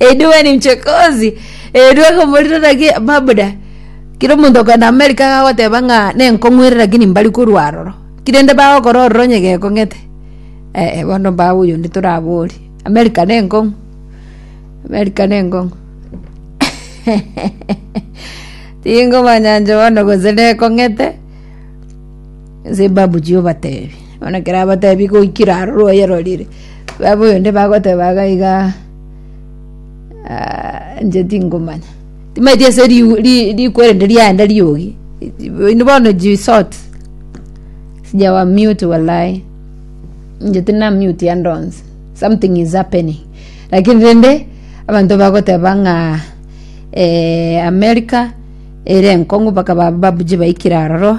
Edwue ni mchokozi. Edwue komorira raki mabuda. Kira omonto okogenda America iga agoteba ng'a nenkong'werera lakini mbari korwa aroro. Kira inde bagokora ororo onye gekong'ete. Eh eh bono mbabu oyo onde torabori. America nenkong'u. America nenkong'u. Tingomanya inche bono gose nekong'ete. Inse mbabuchie obatebi, bono ekero abatebi goikire aroro oyerorire, baba oyonde bagoteba iga iga aa inche tingomanya. Timaeti ase riu ri rikwerende riaenda riogi, oino bono jisort, sija wa mute walayi, inche tina mute ande onsi, something is happening, lakini rende, abanto bagoteba ng'a America ere enkongu mpaka ba- babuchie baikire aroro.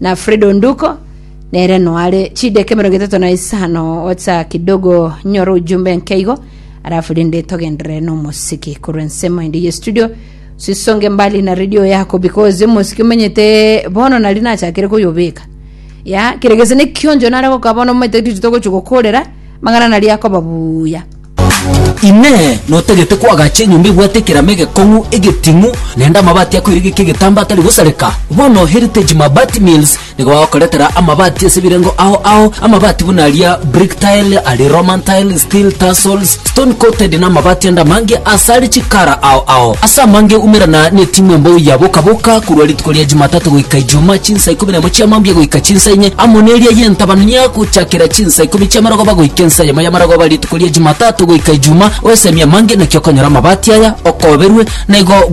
na Fred Onduko, nere noare chideka emerongo etato na isano gocha kidogo nyore ojumbe nkeigo alafu rende togendere nomosiki korwa ensemo ende ye studio sisonge mbali na radio yako because omosiki omenyete bono nari nachakire koyobeka ya kere gese nekionjo nare gokaba bono omanyete riri togochi gokorera mang'ana nari akoba buya Inee! Notagete koagacha enyomba ebwate ekerama egekong'u, egetung'u, naende amabati akoiregeka egetambaa atari gosareka? Bono Heritage Mabati Mills nigo bagokoretera amabati ase ebirengo ao ao, amabati buna aria brick tile, aria roman tile, steel tarsals, stone coated, na amabati ande amange ase are chikara ao ao. Ase amange umerana netimu embou ya Boka Boka korwa rituko ria Jumatatu goika Ijumaa chinsa ikomi na ibere. Chinyembu chiamo mbuya goika chinsa inye, amo neria y'entabana nigo gochakera chinsa ikomi chi'amarogoba goika ensa eyemo y'amarogoba rituko ria Jumatatu goika Ijumaa, oesemie amange, naki okonyora amabati aya okoberwe, na igo bwekorokia.